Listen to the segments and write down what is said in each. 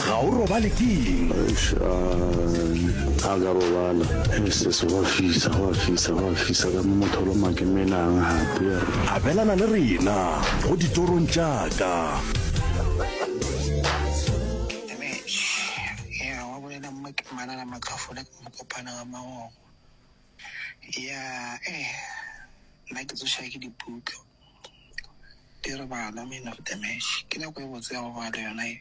Ga o robale ke eng? Eish, uh, a ka robala. Hey sis, go a fisa, go a fisa, go a fisa ka mo motho lo makemelang hape. Abelana le rena go ditorong tša ka. Yeah, wa bolela mma ke manana matlhofole ke mo kopana ga magogo. Yeah, eh, nna ke tsoša ke diputlo. Di re bana man of the match. Ke nako e botse ya go ba le yona e.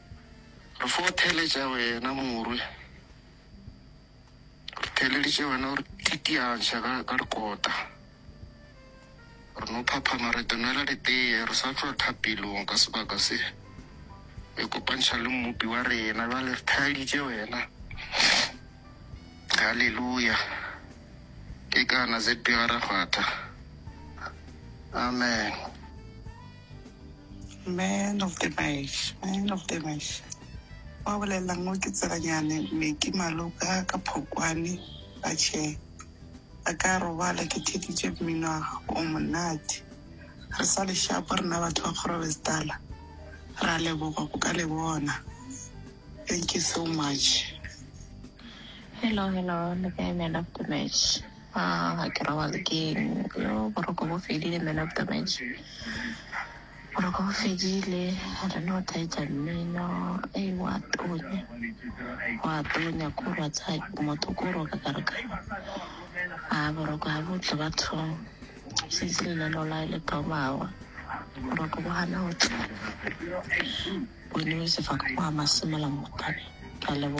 Re fo theletša wena morwe. Re theleditše wena o re titiantšha ka, ka dikota. Re no phaphama re te nwela diteye re sa tšwa thapelong ka sebaka se. Re ikopantšha le Mmopi wa rena bjale re theleditše wena. Haleluya! Ke kana ZB ga ra kgwatha. Amen. Man of the Mash, Man of the Mash. Wa bolelelang mo ke tselanyane me ke maloka ka phokwane ba che ba ka robala ke thekitše mmino wa gago o monate re sa le shapo rena batho ba kgorobestala ra leboga go ka le bona thank you so much Hello, hello, le kae man of the match? Ga ke robale ke eng yo boroko bo fedile man of the match boroko bo fedile a re no thaetsa mmino e wa tonya wa tonya ko ra tsa motho ko roka ka re ka a boroko ga botle batho setse lenaneo la le thomawa boroko bo gana go tla bone sefako go a masimela motane ka lebo